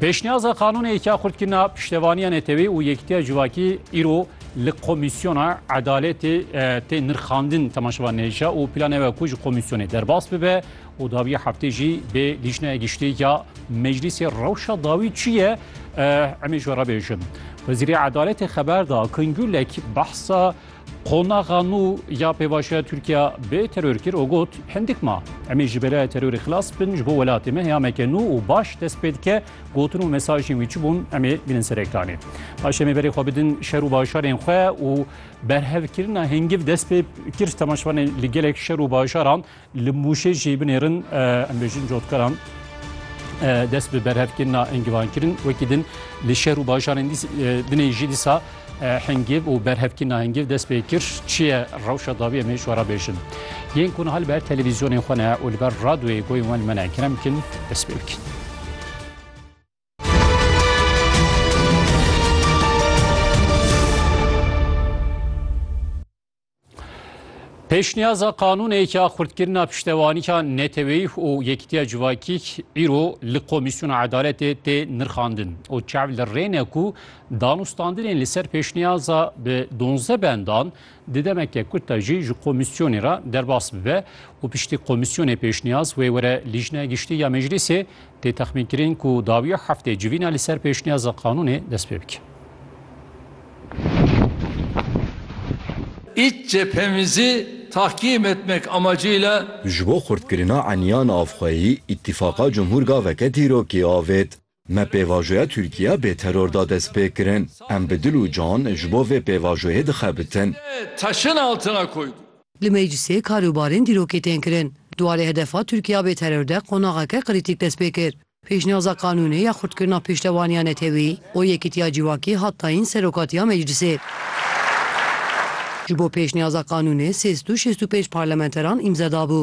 Pêşniyaza qanûnê yek ya xurtkirina piştevaniya netewê û yekîtiya civakî îro li komîsyona edaletê tê nirxandin temaşevan nêşa û plane we ku ji komîsyonê derbas bibe û dawiya heftê jî bê lîjnaya giştî ya meclîsê rewşa dawî çi ye emê ji we re bêjin. Wezîrê edaletê xeber da Kingûlek behsa Qonaxa nû ya pêvajoya Tirkiya bê teror kir û got, Hindik ma em ê ji belaya terorê xilas bin ji bo welatê me heyameke nû û baş dest pê dike. Gotin û mesajên wî çi bûn em ê bînin ser ekranê. Paşê em ê berê xwe bidin şer û bajarên xwe û berhevkirina hingiv dest pê kir. Temaşevanê li gelek şer û bajaran Li Mûşê jî binêrin em bêjin cotkaran dest bi berhevkirina engivan kirin. Wekî din li şer û bajarên dinê jî dîsa hengêv û berhevkirina hengêv dest pê kir. Çi ye rewşa dawî em ê ji we re bêjin. Yên ku niha li ber televîzyonên xwe ne û li ber radyoyê goyên wan li me ne kerem bikin dest pê bikin. Pêşniyaza qanûnê ya xurtkirina piştewanîka neteweyî û yekîtiya civakî îro li Komîsyona Edaletê tê nirxandin û çav li rê ne ku danûstandinên li ser pêşniyaza bi donze bendan di demeke kurt de jî ji komîsyonê re derbas bibe û piştî komîsyonê pêşniyaz wê were Lîjneya Giştî ya Meclîsê tê texmînkirin ku dawiya heftê civîna li ser pêşniyaza qanûnê dest pê bike. Îç cephemizî tahkîm etmek amacîyle. Ji bo xurtkirina eniya navxweyî, Îtîfaqa Cumhur gaveke dîrokî avêt. Me pêvajoya Tirkiya bê teror da destpêkirin. Em bi dil û can ji bo vê pêvajoyê dixebitin. Li meclîsê karûbarên dîrokê tên kirin. Di warê hedefa Tirkiya bê teror de qonaxeke krîtîk dest pê kir. Pêşniyaza qanûnê ya xurtkirina pêştevaniya netewî û yekîtiya civakî hat dayîn Serokatiya Meclîsê. Ji bo pêşniyaza qanûnê sê sed û şêst û pênc parlamenteran îmze dabû.